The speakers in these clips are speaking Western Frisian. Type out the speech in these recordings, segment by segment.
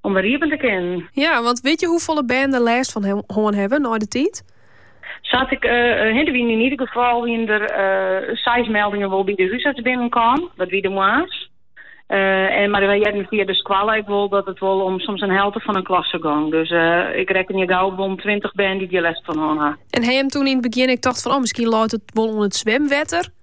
om wer iepen te kinnen. Ja, want weet je hoefolle bern der lêst fan hân hawwe nei de tiid? Sa't ik uh, hinne wien in ieder geval wien er uh, seis meldingen wol bij de huisarts binnenkwam. Dat wie de moas. Uh, en, maar wij hebben via de squalla ik wil dat het wel om soms een helte van een klasse gang. Dus uh, ik reken je gauw om 20 band die je les van horen. En hij hem toen in het begin ik dacht van oh misschien loopt het wel om het zwemwetter.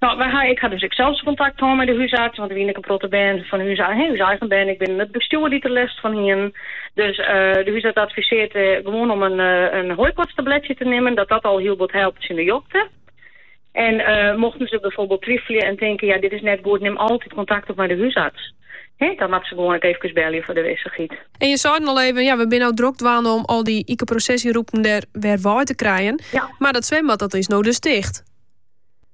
No, wy ha, ik ha dus ek sels kontakt hân mei de húsarts, want der wiene ek in protte bern fan ús, he, ús eigen bern, ek binnen it bestjoer dy't der lêst fan hienen. Dus eh, de húsarts advisearret eh, gewoan om in, eh, in hooikoortstabletsje te nimmen, dat dat al hiel wat helpt tsjin de jokte. En eh, mochten se byfoarbyld twifelje en tinke, ja, dit is net goed, nim altyd kontakt op mei de húsarts. He, dan meie se gewoan ek efkes belje foar de wissichheid. En jo seinen al even, ja, we binne no drok dwaande om al dy ikeprosesjerûpen der wer wei te krijen. Ja. Mar dat swimbad, dat is no dus ticht.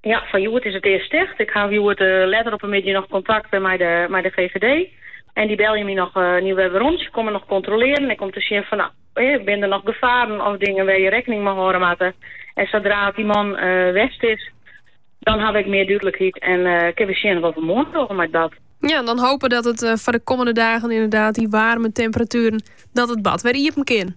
Ja, fan hjoed is it earst ticht. Ik haw hjoed eh, letter op 'e middei noch kontakt eh, mei de, mei de GGD. En dy belje my noch eh, hjoed wer werom. Se komme noch kontrolearjen ek om te sjen fan no, eh, binne der noch gefaren of dingen wêr't je rekkening mei hâlde moatte. En sodra't dy man eh, west is, dan haw ik mear dúdlikheid en eh, kinne we sjen wat we moarn dogge mei it bad. Ja, dan hopen dat it eh, foar de kommende dagen ynderdaad dy waarme temperatueren, dat it bad wer iepen kin.